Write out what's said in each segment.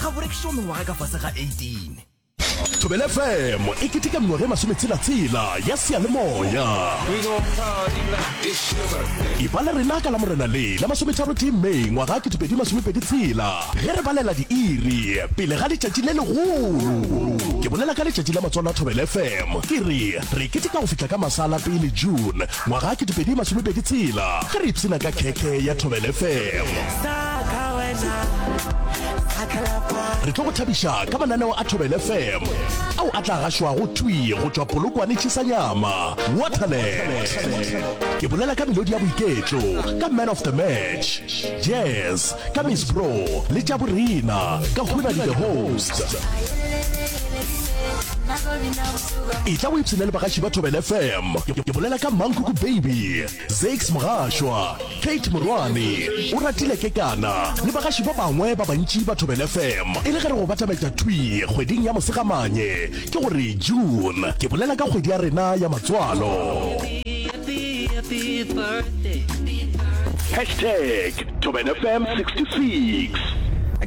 ga go rekišo mengwaga ka fase ga 18 thobele fm e keteka mengwaga e masometshela-tshela ya seyalemoya e ba le rena ka la morena le la masometharo tee may ngwaga 2022 ge re balela diiri pele ga letšatši le legolo ke bolela ka letšatši la matswalo a thobele fm ke re re keteka go fihla ka masala pele june Ngwaga ke dipedi masome pedi tshela ge re ipshina ka khekhe ya Thobel FM. Re tlo go thabiša ka mananeo a Thobel FM ao a tla gašwago thwi go tšwa Polokwane Chisanyama, Waterland. Ke bolela ka melodi ya boiketlo ka Man of the Match, Jazz ka Miss Bro le tša borena ka Hunadi the Host. etla o ipshine le bagaši ba thobel fm ke bolela ka mankoko baby zax mogašwa kate morwane o ratile ke kana le bagaši ba bangwe ba bantši ba thobel fm e le ge re go batametša thwi kgweding ya mosegamanye ke gore june ke bolela ka kgwedi ya rena ya matswalo hashtag thobel fm 66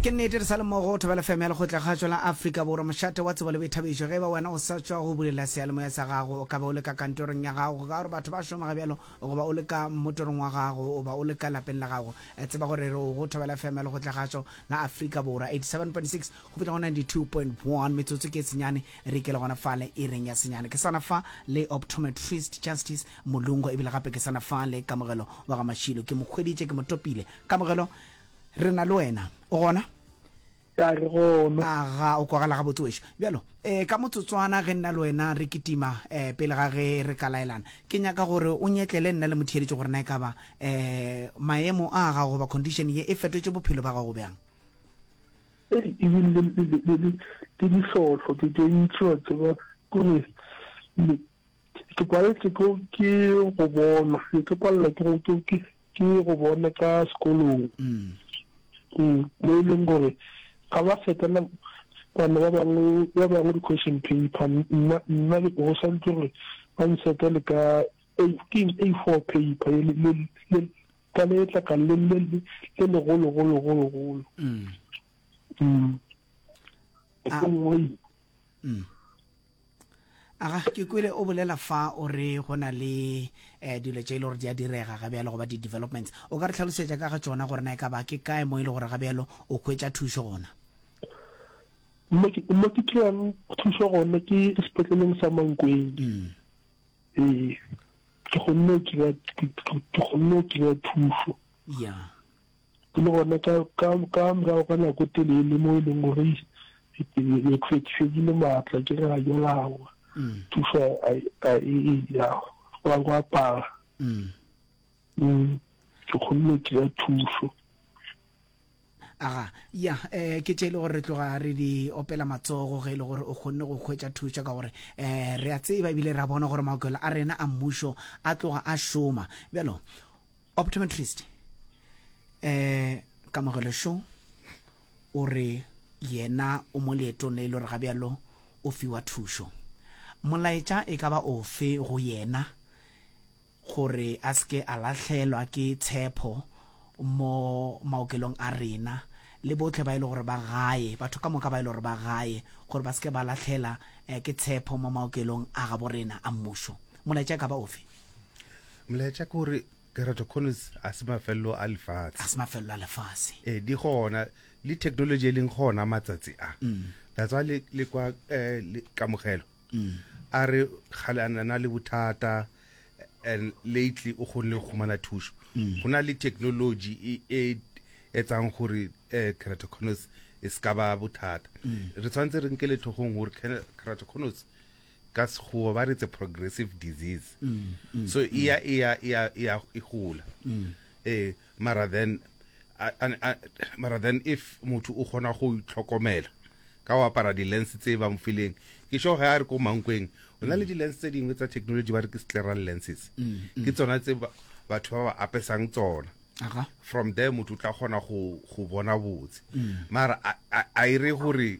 ke nnete re sa le mmogo thobela fm ya lekgotlakgašo la afrika borwa mošate wa tsebo Thabišo, ge e ba wena o sa tšwa go bulela seyalemoya sa gago, o ka ba o le ka kantorong ya gago, go ka ba gore batho ba šoma ga bjalo, goba o le ka mmotorong wa gago, goba o le ka lapeng la gago. Tseba gore re o go thobela FM ya Lekgotlagatšo la Afrika Borwa, 87.6 go fihla go 92.1, metsotso ke e senyane, re ikele gona fale ireng ya senyane. Ke sa na fa le Optometrist Justice Mulungo, ebile gape ke sa na fa le Kamogelo wa ga Mashilo. Ke mo hweditše, ke mo topile. Kamogelo, re na le wena. O gona? Ka re, Gomme. A ga o kwagala gabotse wešo? Bjalo, e, ka motsotswana ge nna le wena re kitima, e, pele ga ge re ka laelana, ke nyaka gore o nyetlele nna le motheeletši gore na e ka ba, e, maemo a gago goba condition ye e fetotše bophelo bja gago bjang. Hei, e bile le, le, le, le, le, le dihlohlo tše, tše ntši, wa tseba, kore, le, ke paletše ke, ke go bona, ne ke palelwa ke go, ke, ke, ke go bone ka sekolong mo e leng gore ga ba fetela bana ba bangwe ba bangwe di-question paper nna nna go santse gore ba nsetele ka keng a four paper ka letla ka le legologologologolo Aga, ke kwele o bolela fa o re go na le eh, dilo tše e le gore di a direga ga bjalo goba di-developments. O ka re tlhalosetša ka ga tšona gore na e ka ba ke kae mo e le gore ga bjalo o hwetša thušo gona? mo ke mo ke kry-ang thušo gona ke sepetleleng sa mankweng Mm. ee ke kgonne go kry-a ke kgonne go kry-a thušo Yeah. Ke le gona ka, ka, ka morago ga nako e telele mo e leng gore ke tlhwekišwekile maatla ke re ga ke lawa mm. thuso a e ya go a go apara mm. Mm. ke kgonne ke ya thuso aga ya eh ke tšele gore re tloga re di opela matsogo ge e le gore o kgonne go hwetša thušo ka gore eh re a tseba ebile ra bona gore maokelo a rena a mmušo a tloga a šoma bjalo optometrist eh kamogelo šo o re yena o mo leetong le e le gore ga bjalo o fiwa thušo molaetša e ka ba ofe go yena gore a se ke a lahlelwa ke tshepho mo maokelong a rena le botlhe ba e le gore ba gae batho ka moka ba e le gore ba gae gore ba se ke ba lahlela eh, ke tshepho mo maokelong a gabo rena a mmušo molaetša e ka ba ofe Molaetša ke gore keratoconus ga se mafelelo a lefatshe. Ga se mafelelo a lefatshe. E, di gona le technology e leng gona matsatsi a mm. that's why le, le kwa eh, le kamogelo mm. a re gale a na le bothata and lately o kgonne go khumana thušo mm. go na le technology e, e etsang gore eh, keratoconus e se ka ba bothata mm. re tshwanetse re nkele tlhogong gore keratoconus Ka Sekgowa ba re it's a progressive disease. So e ya e ya e ya e ya e gola. Eh mara then a- a- a- mara then if motho o kgona go itlhokomela ka go apara di-lens tse ba mo fileng ke sure ge a re ko mankweng o na le di-lens tse dingwe tsa technology ba re ke scleral lenses ke tsona tse ba- batho ba ba apesang tsona Aga. from there motho o tla kgona go go bona botse mara a- a a e re gore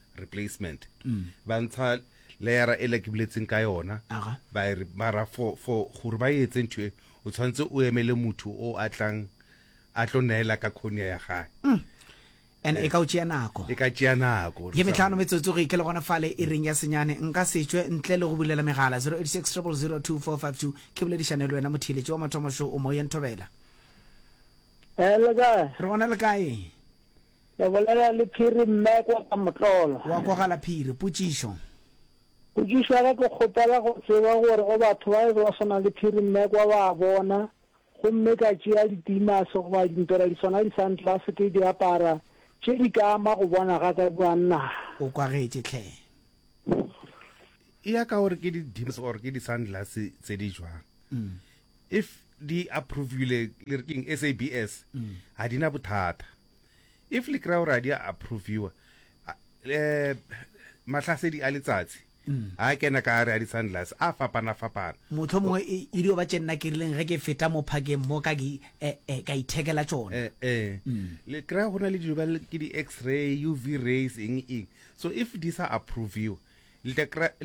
replacement ba ntsha leyara e le ke buletseng ka yona Aga. ba e re mara for for gore ba e etse ntho e o tshwanetse o emele motho o a tlang a tlo neela ka khonia ya gae and e ka o tšea nako e ka tšea nako re ye sa- metlhano metsotso re ke le gona fale e reng ya senyane nka setswe ntle le go bulela megala 08600242 ke boledišane le wena motheeletši wa mathomo šo o moyeng thobela Eh, le kae? re gona le kae Le bolela le Phiri mme kwa ka motlolo. Wa kwagala Phiri. Potšišo. Potšišo ya ka ke kgopela go tseba gore go batho ba e be ba swana le Phiri mme kwa ba bona gomme ka tšea dipeimase goba dimpera di swana le sunglass ke di apara tše di ka ama go bona ga ka kua naa? O kwagetše hle. E ya ka gore ke di dims or ke di sunglass tse di jwang. If di approvile le re keng SABS ga di na bothata. if le kry-a gore a di a approviwa um mahlasedi a letsatsi mm. a kena ka gare a di-sunglass a fapana-fapana motlho mongwe e, e dio ba tše nna ke rileng ge ke feta mo phakeng mo ka e, e, ka ithekela tsona eh, mm. le kry-a go na le dilo ba ke di-x-ray u v rays eng eng so if di sa approviwa le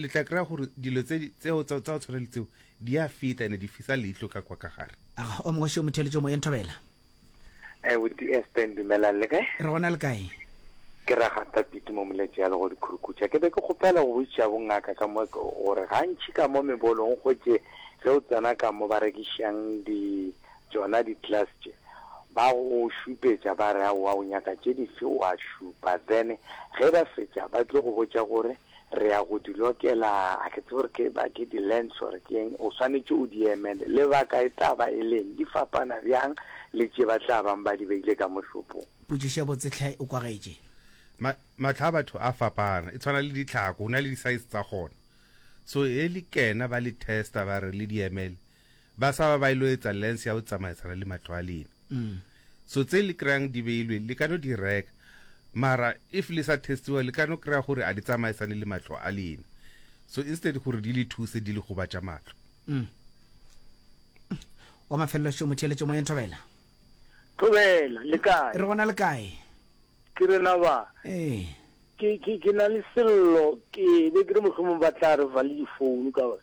tla kry-a gore dilo tseo tsa go tshwana le tseo di a feta ene di fisa leitlho ka kwa ka gare o mongwe seo motheletso moyeng thobela Eh, with the Aspen, dumelang le kae? Re gona le kae? Ke ra gata piti mo moletše ya lego dikhurukhutša. Ke be ke kgopela go boitšha bongaka ka mo gore gantši ka mo mebolong gotše ge o tsena ka mo ba rekišang di tšona di class tše ba go šupetša ba re aowa o nyaka tše dife wa šupa then ge ba fetša ba tlo go botša gore re ya go di lokela, a ke tsebe gore ke ba ke di lens gore ke eng, o swanetše o di emele. Lebaka e tla ba e leng, di fapana bjang le tše ba tla bang ba di beile ka mo shopong? Potšišo ya botse tlhe o kwagetše. Ma, matlho a batho a fapana, e tshwana le ditlhako, go na le di size tsa gona. So he le kena ba le testa ba re le di emele, Baswa ba ba ilo etsa lens ya go tsamaisana le mahlo a lena. So tse le kry-ang di beilwe le ka no di reka mara if le sa testiwa le ka no kry-a gore a di tsamaisane le mahlo a lena. So instead gore di le thuse di le gobatša mahlo. Wa mafelelo šo motheeletšo moyeng Thobela. Thobela, le kae? Re gona le kae? Ke rena ba. Ee. Ke ke ke na le sello ke be ke re mohlomong ba tla re valile phone ka gore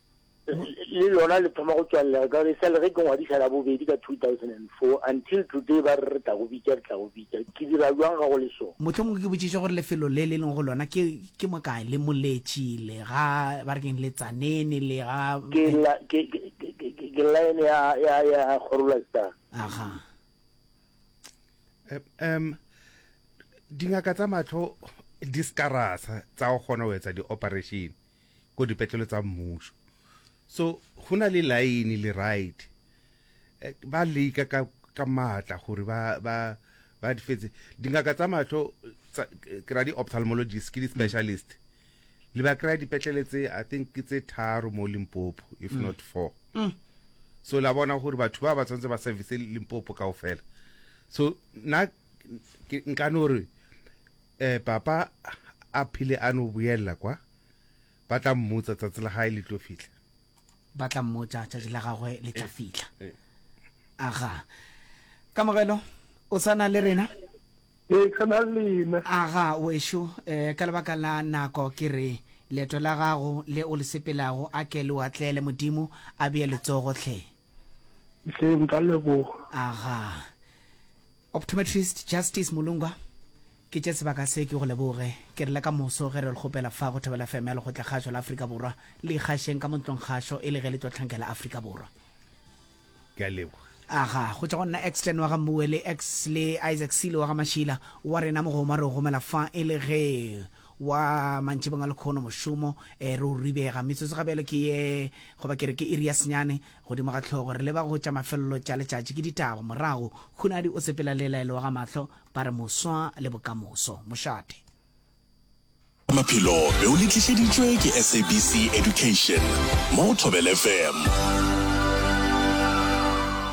le lona le thoma go tswalega ka gore e sale ge ke ngwadisa la bobedi ka 2004 until today ba re re tla go bitša re tla go bitša ke dira jwang ga go le so motlho mongwe ke botšiša gore lefelo le le leng go lona ke ke mo kae le moletši le ga ba re keng le tsanene le ga ke la ke ke line ya ya ya gorola star aha um dingaka tsa matlho di skarasa tsa go kgona go etsa di-operation ko dipetlele tsa mmušo so go na le line le right ba leka ka ka matla gore ba ba ba di fetse dingaka tsa mahlo ke ra di ophthalmologist ke di specialist le ba kry dipetlele tse i think ke tse tharo mo Limpopo if not four so la bona gore batho ba ba tsantse ba service Limpopo kaofela so na nka no re Ee, Papa a phile a no boelela kwa, ba tla mmotsa, tsatsi la gae le tlo fihla. Ba tla mmotsa, tsatsi la gagwe le tla fihla. Aga. Kamogelo, o sa na le rena? Ee, ke na le lena. Aga, wešo, eh, ka lebaka la nako, ke re, leeto la gago le o le sepelago, a ke le o atlele, Modimo a bee letsogo, hle. hle nka leboga aga optometrist justice molungwa ke tše sebaka se ke go leboge ke rile ka moso ge re le kgopela fa go thobela fm ya lekgotla kgašo la afrika borwa le ikgašeng ka montlong kgašo e le ge le tlo tlhankela afrika borwa ke a leboga aga go tšwa go nna exten wa ga mmuele x le isaac silo wa ga mašila wa rena mogoma re o gomela fa e le ge Wa mantšibong a lekhono mošomo e re o ribega. Metsotso ga bjalo ke ye, goba ke re ke iri ya senyane, godimo ga hlogo. Re leba go tša mafelelo tša letšatši. Ke ditaba. Morago, Hunadi o sepela le laelo wa ga mahlo, ba re moswa le bokamoso. Mošate. Maphelo be o le tlišeditšwe ke SABC Education mo go Thobela FM.